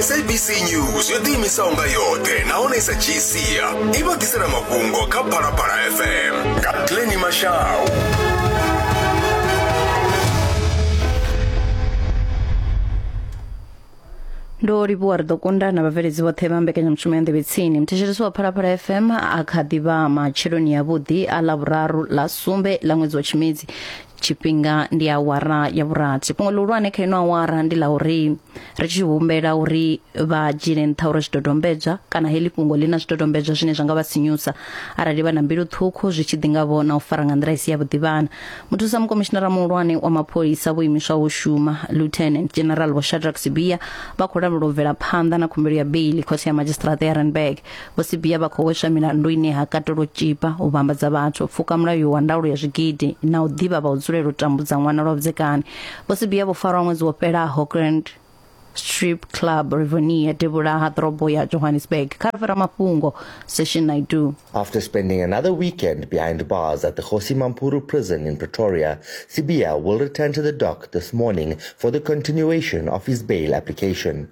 sabc news yo ḓiimisaho nga yoṱhe nahone sa dzhii sia i vha ḓisela mafhungo kha phalaphala fm nga pleni mashau ndo livhuwa ri ḓo kunda na vhabveledzi vhoṱhe vha mbekanyamushumo ya nḓevhe tsini muthetshelesi wa phalaphala fm a kha ḓivha matsheloni yavhuḓi a ḽa vhuraru ḽa sumbe ḽa ṅwedzi wa tshimedzi tshifhinga ndi awara ya vhurathi fhungo ḽihulwane kha ino awara ndi ḽa uri ri tshi humbela uri vha dzhiele nṱha uri zwidodombedzwa kana heḽi fhungo ḽi na zwidodombedzwa zwine zwa nga vha sinyusa arali vha na mbilu ṱhukhu zwi tshi ḓi nga vho na u fara nga nḓila i si ya vhuḓivhana muthusa mukomishinara muhulwane wa mapholisa vho imiswa u shuma lieutenant general vho shadrack sibia vha khou lavhelwa u bvela phanḓa na khumbelo ya beili khothe ya madzhisiṱiraṱa ya randburg Vho Sibiya vha khou hweswa milandu ine ha katela u tshipa, u vhambadza vhathu, u pfuka mulayo wa ndaulo ya zwigidi na u ḓivha vha u dzulela u tambudza ṅwana lwa vhudzekani. Vho Sibiya vho farwa ṅwedzi wo fhelaho Grand Strip Club Rivonia devhula ha ḓorobo ya Johannesburg kha ri fhira mafhungo Session Naidu. After spending another weekend behind bars at the Kgosi Mampuru prison in Pretoria, Sibiya will return to the dock this morning for the continuation of his bail application.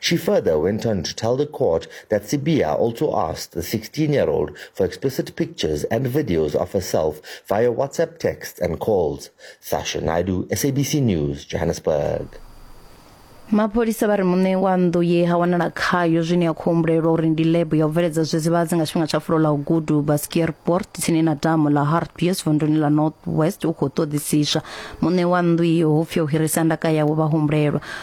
She further went on to tell the court that Sibiya also asked the 16-year-old for explicit pictures and videos of herself via WhatsApp texts and calls. Sasha Naidu, SABC News, Johannesburg. mapholisa vha ri muṋe wa nnḓu ye ha wanala khayo zwine ya khou humbulelwa uri ndi lebo ya u bveledza zwidzivhadzi nga tshifhinga tsha fulo ḽa u gudu baskierport tsini na damu ḽa hartbees vunduni ḽa north west u khou ṱoḓisiswa muṋe wa nnḓu iyo hupfi o hirisa ndaka yawe vha humbulelwa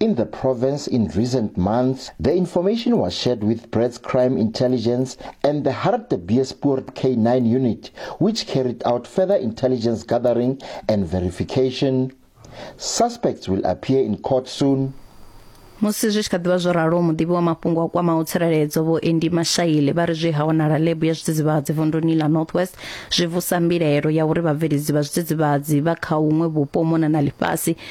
In the province in recent months, the information was shared with Brad's Crime Intelligence and the Hartbeespoort K9 unit, which carried out further intelligence gathering and verification. Suspects will appear in court soon. musi zwi tshi kha ḓivha zwo ralo muḓivhi wa mafhungo a kwamaho tsireledzo vho endi mashaile vha ri zwi ha wanala lebu ya zwidzidzivhadzi vunduni ḽa north west zwi vusa mbilaelo ya uri vhabveledzi vha zwidzidzivhadzi vha kha huṅwe vhupo u mona na ḽifhasi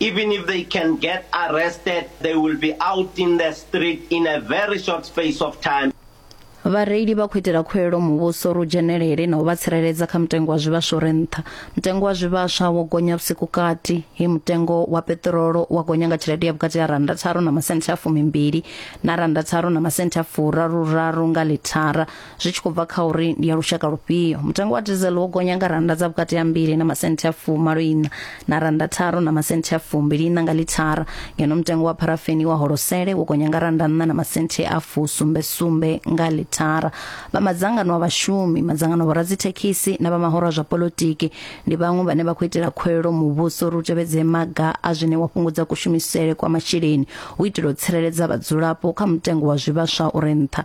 Even if they can get arrested, they will be out in the street in a very short space of time. Vhareili vha khou itela khuwelo muvhuso uri u dzhenelele na u vha tsireledza kha mutengo wa zwivhaswa uri nṱha. Mutengo wa zwivhaswa wo gonya vhusiku kati, he mutengo wa peṱirolo wa gonya nga tshelede ya vhukati ha rannda tharu na masenthe a fumimbili na rannda tharu na masenthe a furaru raru nga lithara. zwi tshi khou bva kha uri ndi ya lushaka lufhio mutengo wa diesel wo gonya nga rannda dza vhukati ha mbili na masenthe a fumalo ina na rannda tharo na masenthe a fumbili ina nga lithara ngeno mutengo wa pharafeni wa holosele wo gonya nga rannda nṋa na masenthe a fusumbe sumbe nga lithara vha madzangano a vhashumi madzangano a vhoradzithekhisi na vha mahoro a zwa polotiki ndi vhaṅwe vhane vha khou itela khuwelelo muvhuso uri u tevhedze maga a zwine wa fhungudza kushumisele kwa masheleni u itela u tsireledza vhadzulapo kha mutengo wa zwivhaswa uri nṱha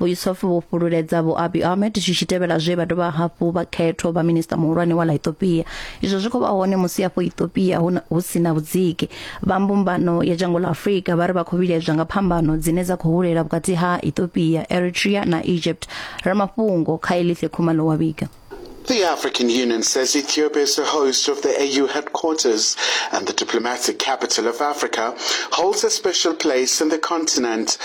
vhuisofi vho fhululedza vho abi ahmed zwi tshi tevhela zwe vha dovha hafhu vha khetho vha minista muhulwane wa la ethiopia izwo zwi khou vha hone musi afho ethiopia hu si na vhudziki vha mbumbano ya dzhango la afurika vha ri vha khou vhilaedzwa nga phambano dzine dza khou hulela vhukati ha ethiopia eritrea na egypt ramafhungo kha elithe khumalo wa vhiga The African Union says Ethiopia is the host of the AU headquarters and the diplomatic capital of Africa holds a special place in the continent.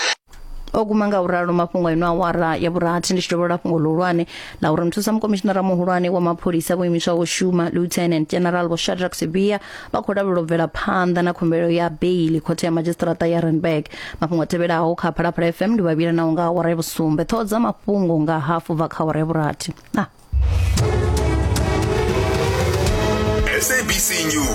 o guma nga u ralo mafhungo a ino awara ya vhurathi ndi tshi dovholola fhungo ḽihulwane ḽa uri muthusa mukomishinara muhulwane wa mapholisa vho imiswaho u shuma lieutenant general vho shadrack sibia vha khou lavhelela u bvela phanḓa na khumbelo ya beili khothe ya madzhisiṱiraṱa ya Randburg mafhungo a tevhelaho kha Phalaphala FM ndi vhavhila naho nga awara ya vhusumbe ṱhoho dza mafhungo nga hafu bva kha awara ya vhurathi ah. SABC News